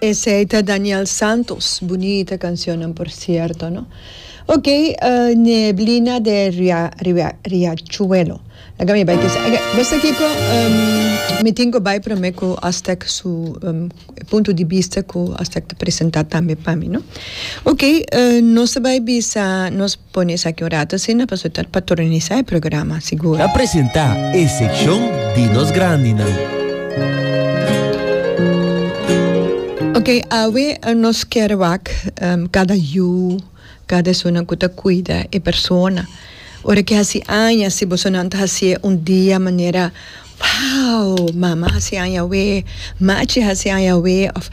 Esey ta Daniel Santos, bunita cancionnan por cierto no. Ok, uh, Neblina de Ria, Ria, Riachuelo. Laga mi bay kisa. Ok, basta kiko, um, mi tin ko bay prome ko Aztec su um, punto di vista ko Aztec ta presenta tambe pa mi no. Ok, uh, nos ta bay bisa, nos. Pone esaki un rato asina pasobra ta patronisá e programa, sigur. Ta presentá e sekshon di nos grandinan. Oke, awe nos kere wak kada yu, kada esunnan ku ta kuida e persona. Ora ke hasi aña, si bosonan ta hasié un dia manera Wow! Mama hasi añawe, Machi hasi añawe of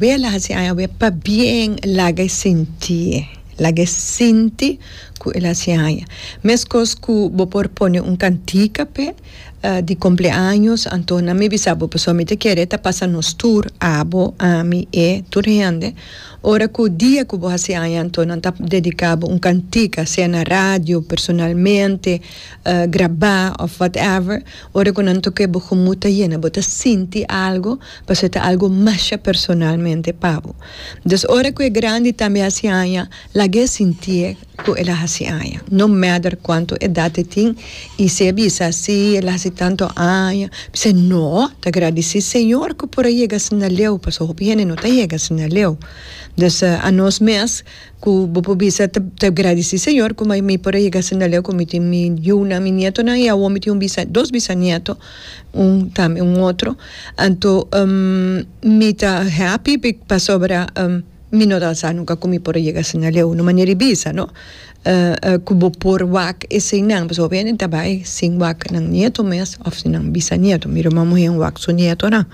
Wela hasi añawe pabien laga e sinti. Laga e sinti ku el hasi aña. Meskos ku bo por pone un kantika p'e di kompleaños anto nan mi bisa bo pasobra mi ta kere ta pasa nos tur, abo, ami, e, tur hende. Ora ku dia ku bo hasi aña anto nan ta dediká bo un kantika, sea na radio, personalmente. grabá of whatever ora cu nan toca e bogo moed ta yena bo ta sinti algo pasobra e ta algo masha personalmente pa bo dus ora cu e grandi tambe haci aña lagu'e sinti'e cu el a haci aña no matter cuanto edad e tin y si e bisa si el a haci tanto aña bis'a no ta gradici señor cu por a yega asina leu pasobra hopi hende no ta yega asina leu dus anos mes. Ku bo por bisa, Ta gradisí, Señor, ku mi por a yega asina leu, ku mi tin mi yunan, mi nietonan, i awor mi tin un bisa, dos bisanieto, un tambe un otro. Anto mi ta happy pasobra mi no ta sa nunka ku mi por a yega asina leu. Un manera di bisa, no? Ku bo por wak esei nan, pasobra hopi hende ta bai sin wak nan nieto mes òf nan bisanieto. Mi ruman muhé wak su nietonan,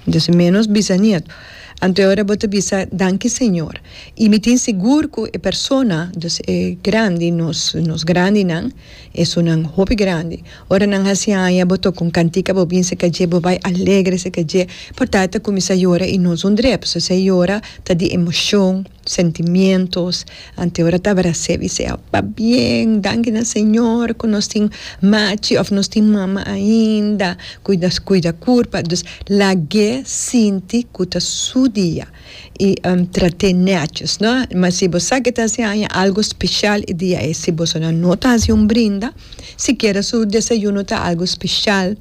entonces ménos bisanieto. Anto ora bo ta bisa, Danki Señor, i mi tin sigur ku e persona, dus e grandi, nos nos grandinan, esunnan hopi grandi, ora nan hasi haña bo toka un kantika bo bin se ka dje bo bai alegre se ka dje, por ta e ta kuminsá yora i no es un drep, so si e yora ta di emoshon. Sentimientos, ante ora tabara sebi sea pabien, danki na Señor cu nos tin machi of nos tin mama ainda cu nos cuida curpa, dus lag'e sinti cu ta su dia y trat'e netjes no, ma si bo sa que ta hasi aña algo special e dia ey, si bosonan no ta hasi un brinda, sikiera su desayuno ta algo special.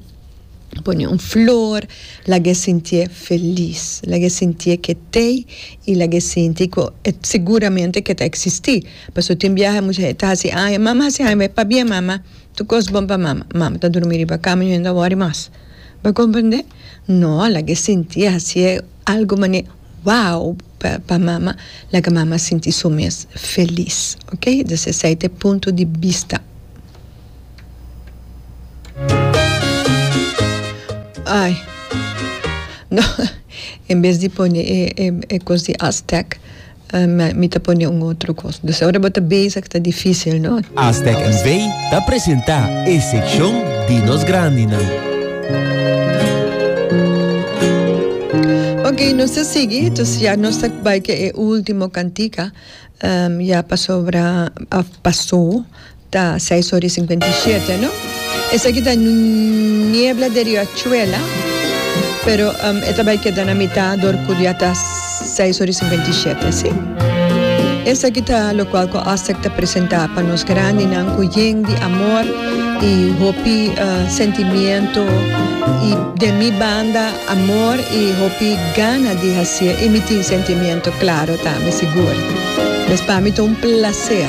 pone un flor lagu'e sinti'e felis lagu'e sinti'e ke tei y lagu'e sinti ku e seguramente ke ta existi pasobra tin biaha mucha hende ta hasi aña mama hasi aña me pabia mama tur kos bon pa mama mama ta drumi riba cama y no hende a wori mas bo a comprende no lagu'e sinti'e hasi'e algo manera wow pa pa mama laga mama sinti su mes felis okay des esei ta e punto di bista. Ai, no, en bes di pone e, e, e cos di Aztec, eh, mi, mi ta pone un otro cos. Dus ora bo ta bezig ta difícil, no? Aztec NV ta presenta e seccion di nos grandinan. Ok, nos ta sigui, dus ya nos ta bai ke e ultimo cantica, em, ya pasobra, a, pasó. Ta seis ora i sinkuenta i shete no. Esaki ta niebla de riachuela pero e ta bai keda na mita dor ku ya ta seis ora i sinkuenta i shete si. Esaki ta lokual ku Astec ta presenta pa nos grandinan ku yen di amor i hopi sentimiento i den mi banda amor i hopi gana di hacié i mi tin sentimiento claro tambe sigur. Mes pa mi ta un placer.